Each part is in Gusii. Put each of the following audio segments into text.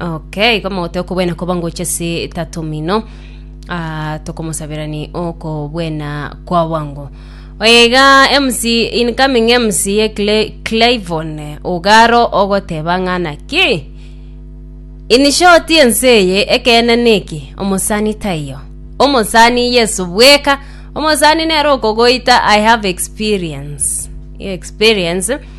Okay, igo mogote okobwena koba ngocha ase tato mino Ah, tokomosabera ni okobwena kwa wango oye iga mc incoming mc ye Cle- clivon ogaro ogoteba ng'ana ki in short ense eye ekeene neki omosani taiyo omosani yeso bweka omosani nere okogoita i have experience experience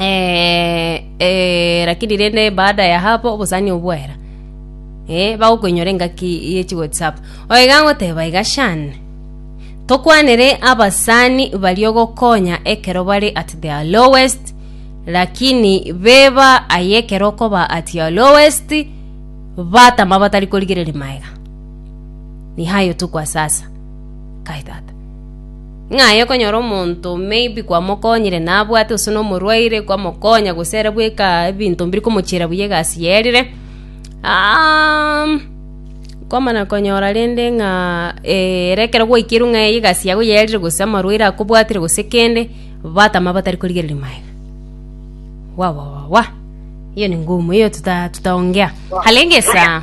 eh, eh, lakini rende baada ya hapo obosani obwera eh, bagokoinyora engaki yechi whatsapp oiga ngoteba iga shane tokwanere abasani bario gokonya ekero bari at their lowest lakini beba aye ekero okoba at your lowest batama batari korigereria maega ni hayo tukwa sasa kai tata Ng'a aye okonyora omonto maybe kwamokonyire nabwate gose nomorwaire kwamokonya gose ere bweka ebinto mbiri komochiera buya egasi yerire. Aaaam kwamana konyora rende ng'a ere ekero gwaikirwe ng'a eye egasi yago yerire gose amarwaire akobwatire gose kende, batama batari korigereria maega. Wawawawa, hiyo ni ngumu hiyo tuta tutaongea. Halengesa.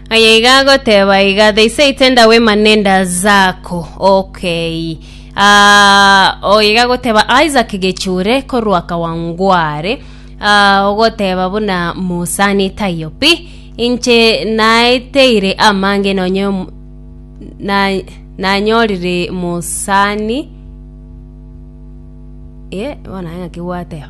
Aye iga agoteba iga, They say tenda wema nenda zako. Okay. Ah, o iga agoteba Isaac Gechure korwa Kawangware. Ah, ogoteba buna Musani taiyo pi. Inche naeteire amange nonye om- na nanyorire Musani. Eh, bona ng'aki gwateba.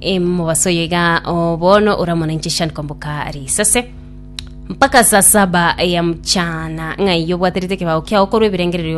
Em, mobaso oyo iga o, bono oramona inche shani komboka risase mpaka saa saba ya mchana ng'ai obwaterete ekebago kiao korwa ebirengererio